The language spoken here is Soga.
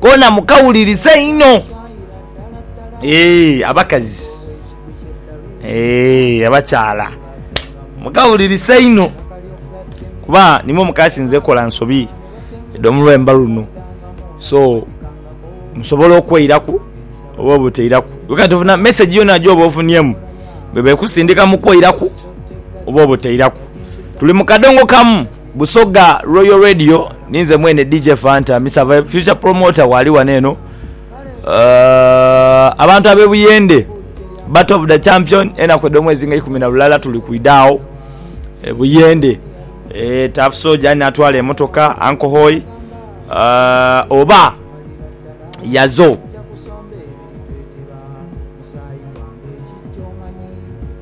kona mukawuliriza inho eeh abakazi eeh abakyala mukawuliriza inho kuba nimwo mukasinze okola ensobi edho mulwembo luno so musobola okweiraku oba obuteiraku kati ofuna mesegi yona joba ofunyemu bwebekusindika mukweiraku oba obuteiraku tuli mukadongo kamu. Busoga Royal Radio ni nze mwene DJ Fanta Mister Vibe Future Promoter waali wano eno uh, abantu abe Buyende Battle of the Champion enaku edh'omwezi nga ikumi na lulala tuli kwidha agho e Buyende e, Tough Soldier ani atwala emotoka Uncle Hoy uh, oba yazo